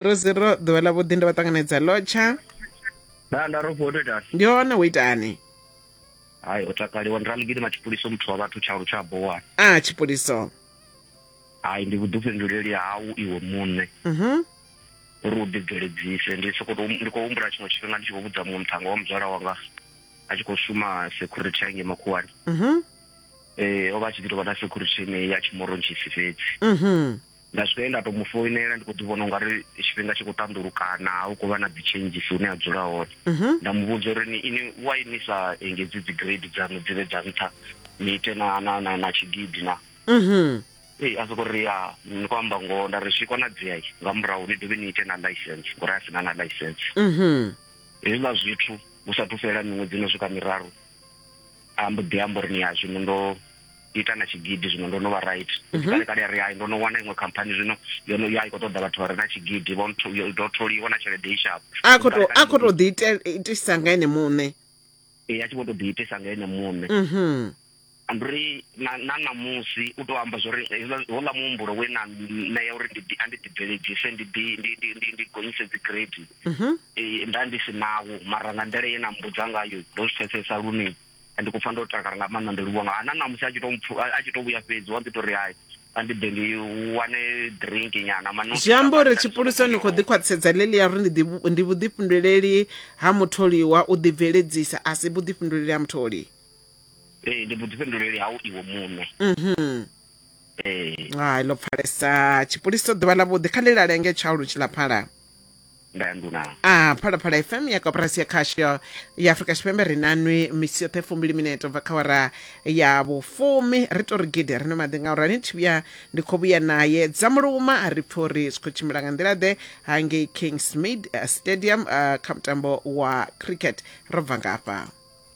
ro zero ḓuvha ḽa vhuḓi ndo vha ṱanganedza lotsha nda nda ro fhoto itani ndi hone wo itani hayi o takaliwa ndi raligidi matshipuliso muthu wa vhathu tshaulu tsha bowa a tshipuliso hayi ndi vhuḓifhinduleli hau iwe muṋe mhm uri u ḓibveledzise ndi soko ndi khou humbula tshiṅwe tshifhinga ndi tshi khou vhudza muṅwe muthannga wa muzwala wanga a tshi khou shuma security hange makhuwani mhm eh o vha a tshi ḓi tovha na security ine ya tshimorongisi fhedzi mhm Nda swika he nda tou mu foinela ndi khou ḓi vhona u nga ri tshifhinga tshi khou ṱanḓulukana, hu khou vha na dzi changes hune a dzula hone. Mhm. Nda mu vhudza uri ni ini why ni sa engedzi dzi grade dzaṋu dzi vhe dza nṱha ni ite na na na na tshigidi na. Mhm. Ee, a sokou ri ya ni khou amba ngoho nda ri zwi konadzea i, nga murahu ni dovhe ni ite na licence ngori a si na na licence. Mhm. Hezwiḽa zwithu hu sathu fhela miṅwedzi ino swika miraru. a mbo ḓi amba uri ni ya zwino ndo ita na tshigidi zwino ndo no vha right mhm. kale kale ri hai ndo no wana iṅwe khamphani zwino yo no ya i kho ṱoḓa vhathu vha re na tshigidi vho ndo tholiwa na tshelede i shapo a kho to a kho to ḓi itisa nga ene muṋe e ya tshi vho to ḓi itisa nga ene muṋe mhm anduri na na namusi u to amba zwori hola muhumbulo we na na ya uri ndi andi ḓi bveledzise ndi ḓi ndi ndi ndi ndi gonyise dzi grade mhm. eh, nda ndi si nawo mara nga nḓila ye na mbudza ngayo ndo zwi pfesesa lune ndi khou pfa ndo takala nga maanḓa ndi livhuwa nga ana namusi a tshi to a tshi to vhuya fhedzi wa ḓi to ri hai a ndi ḓe ndi wane drink nyana mano zwi amba uri tshipulusa ni khou ḓi khwaṱhisedza ḽeḽi ya uri ndi ndi vhuḓifhinduleli ha mutholiwa u ḓi bveledzisa a si vhuḓifhinduleli ha mutholi ee ndi vhuḓifhinduleli hau iwe muṋe mhm ee hai ḽo pfalesa tshipulisa ḓuvha ḽa vhuḓi kha ḽi lalenge tshaulu tshilaphala nda ya nduna a phalaphala fm ya koporasi ya khasho ya afurika tshipembe ri na nwi misi yoṱhe fumbili minete bva kha wara ya vhufumi ri to ri gidi ri no maḓi nga urani thi vhuya ndi khou vhuya naye dza muluma a ri pfhi uri zwi khou tshimbila nga nḓila ḓe hangei kingsmead eh, stadium eh, kha mutambo wa cricket ro bva ngafha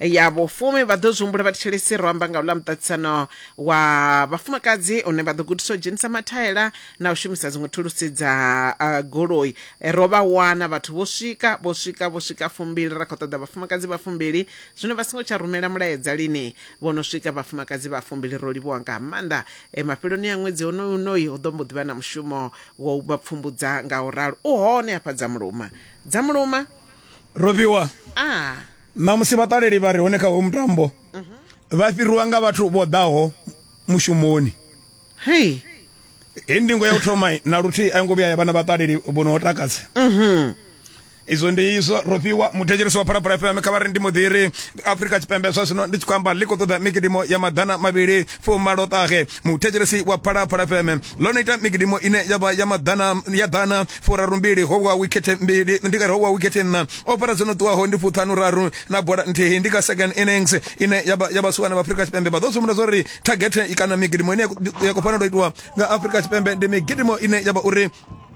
ya vhufumi vha ḓo zwi humbula vha thetshelesi ro amba nga u ḽa muṱaṱisano wa vhafumakadzi une vha ḓo gudisa u dzhenisa mathaela na u shumisa dziṅwe thulusi dza uh, goloi eh, ro vha wana vhathu vho swika vho swika vho swika fumbili ra khou ṱoḓa vhafumakadzi vha fumbili zwino vha songo tsha rumela mulaedza lini vho no swika vhafumakadzi vha fumbili ro livhuwa nga maanḓa eh, mafheloni a ṅwedzi honoyu unoyi hu ḓo mbo ḓi vha na mushumo wa u vha pfumbudza nga u ralo u hone hafha dza muluma dza muluma robiwa ah Ṋamusi vhaṱaleli vha re hone kha hoyu mutambo vha fhiriwa nga vhathu vho ḓaho mushumoni. Hei hei ndingo ya u thoma na luthihi a yo ngo vhuya ya vha na vhaṱaleli vho no takadza izwo ndi izwo ro fhiwa muthetshelesi wa phalaphala fm kha vha ri ndi muḓiri afrika tshipembe zwa zwino ndi tshi khou amba ḽi khou ṱoḓa mikidimo ya maḓana mavhili fumaloṱahe muthetshelesi wa phalaphala fm ḽo no ita mikidimo ine ya vha ya maḓana ya ḓana furarumbili ho wa wikhethe mbili ndi kare ho wa wikhethe nṋa o fara dzo no ṱuwaho ndi fuṱhanu raru na bola nthihi ndi kha second innings ine ya vha ya vhasiwana vha Afrika Tshipembe vha ḓo sumbedza zwa uri target kana mikidimo ine ya khou fanela u itiwa nga Afrika Tshipembe ndi mikidimo ine ya vha uri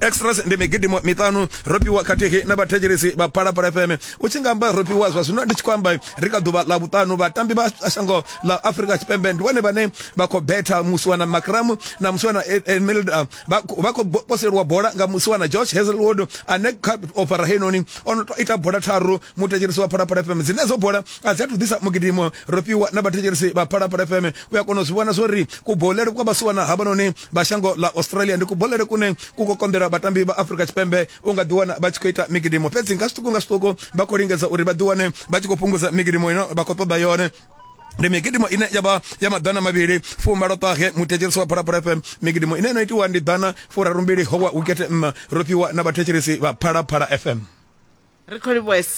extras ndi migidimo miṱanu ropiwa khathihi na vhathetshelesi vha phalaphala fm u tshi nga amba ropiwa zwa zwino ndi tshi khou amba ri kha ḓuvha ḽa vhuṱanu vhatambi vha shango ḽa afrika tshipembe ndi vhone vhane vha khou betha musiwana macram na musiwana emelda vha khou poseliwa bola nga musiwana george hazelwood ane kha ofara heinoni o no ita bola tharu muthetshelesi wa phalaphala fm dzine dzo bola a dzi athu ḓisa mugidimo ropiwa na vhathetshelesi vha phalaphala fm u a kona u zwi vhona zwo ri kubolele kwa vhasiwana havhanoni vha shango ḽa australia ndi kubolele kune ku khou konḓela vhatambi vha afrika tshipembe u nga ḓiwana vha tshi khou ita migidimo fhedzi nga zwiṱuku nga zwiṱuku vha khou lingedza uri vha ḓiwane vha tshi khou fhungudza migidimo ino vha khou ṱoḓa yone ndi migidimo ine ya vha ya maḓana mavhili fumalo ṱahe muthetshelisi wa phalaphala fm migidimo ine no itiwa ndi ḓana furarumbili howa wikete nṋa ro fhiwa na vhathetshelisi vha phalaphala fm ri khou livhuesa